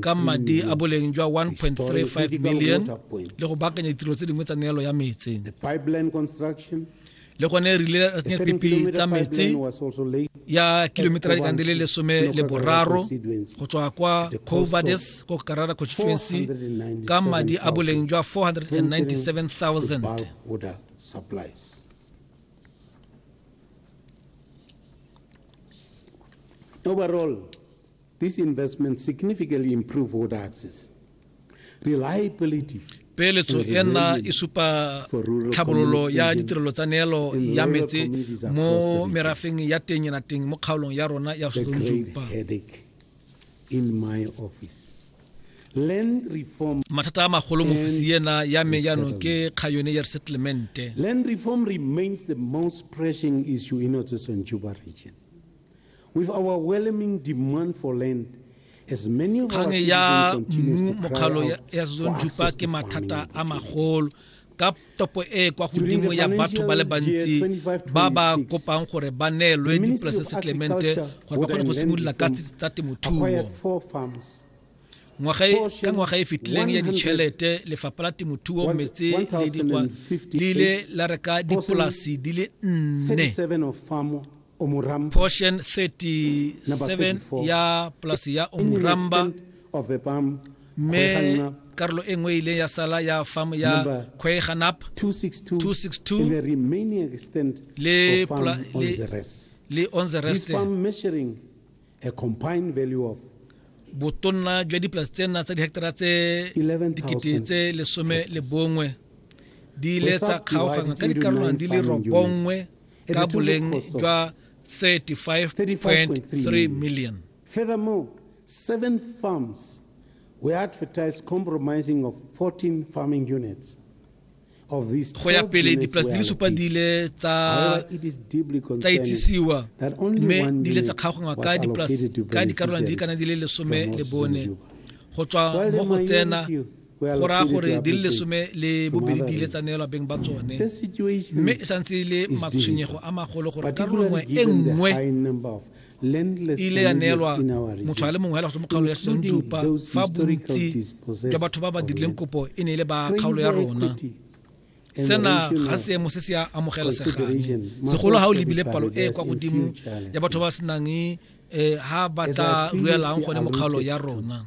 ka madi a boleng jwa 1.35 million le go baakanya ditiro tse dingwe tsa neelo ya metsi le gone re ile ra tsenya pipi tsa metsi ya kilometera dikang di le lesome le boraro go tswa kwa covades ko karara constituency ka madi a boleng jwa 497000 Overall, This investment significantly improve water access, reliability peeletso e nna e supa tlhabololo ya ditirelo tsa neelo ya metse mo merafeng ya teng ena teng mo kgaolong ya rona ya sotonjupa mathata a magolo mo ofisi ena ya me jaanong ke kgayone ya resettlemente land reform remains the most pressing issue in region With overwhelming demand for land, kgang ya mmu mokgalo ya zone ke mathata a magolo ka topo e kwa godimo ya batho ba le bantsi ba ba kopang gore ba neelwe dipolase settlemente gore ba kgone go simolola ka tsa temothuo ka ngwaga e fetileng ya ditšhelete lefapha la temothuo metse le dikwa le ile la reka dipolasi di le nne portion 37 ya polasi ya omuramba mme karolo e nngwe e ile ya sala ya farm ya kweganap 262 le, pla, le, le on the rest botonna jwa dipolasi tsena tsa dihectara tse dikete tse lesome le bongwe di ile tsa kgaogana ka dikarolwana di le robongwe ka boleng jwa 35.3 million furthermore seven farms we advertised compromising of 14 farming units go ya pele dipolase di le supa di ile tsa itsisiwa mme di ile tsa kgaogangwa ka dipolase ka dikarolwana di kana di le lesome le bone go tswa mo go tsena go raya gore di le lesome le bobedi di ile tsa neelwa beng ba tsone mme e santse e le matshwenyego a magolo gore karolo nngwe e nngwe e ile ya neelwa motho a le mongwe hela go mo kgaolo ya senjupa fa bontsi jwa batho ba ba dirileng kopo e ne e le ba kgaolo ya rona sena ga seemo se se amogela segang segolo ga o lebile palo e kwa godimo ya batho ba senang um eh, ga ba tla ruelang gone mokgaolo ya rona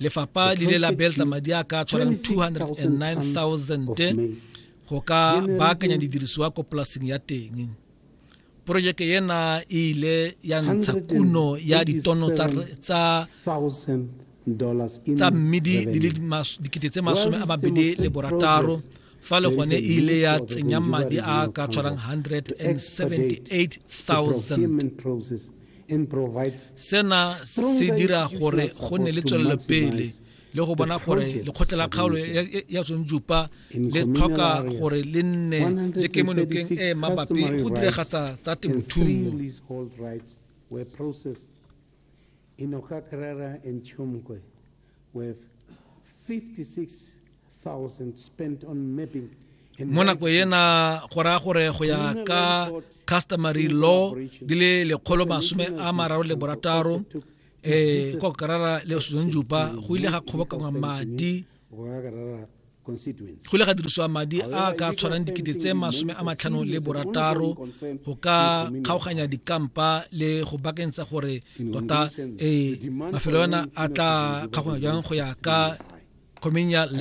lefapha le ile la beeletsa madi a ka tshwanang 209000 go ka baakanya didirisiwa ko polaseng ya teng porojeke ena e ile ya ntsha kuno ya ditono tsa tsa mmidi di le dikete tse masome a mabedi le borataro fa le gone e ile ya tsenya madi a ka tshwarang 178000 sena se dira gore go nne le tswelelopele le go bona gore lekgotla la kgaolo ya tsongjupa le tlhoka gore le nne le kemonokeng e mabapi go diregatsa tsa temothuo in Okakrara and Chumkwe. with 56,000 spent on mapping mo nako ena go raya gore go ya ka customary law di le lekgolo masome a mararo le borataro um kwa karara le suzan jupa go ile ga kgobokangwa madi constituents. go ile ga dirisiwa madi a ka tshwarang dikete tse masome a matlhano le borataro go ka kgaoganya dikampa le go bakentsha gore tota ee mafelo ona a tla kgaoganya jang go ya ka communal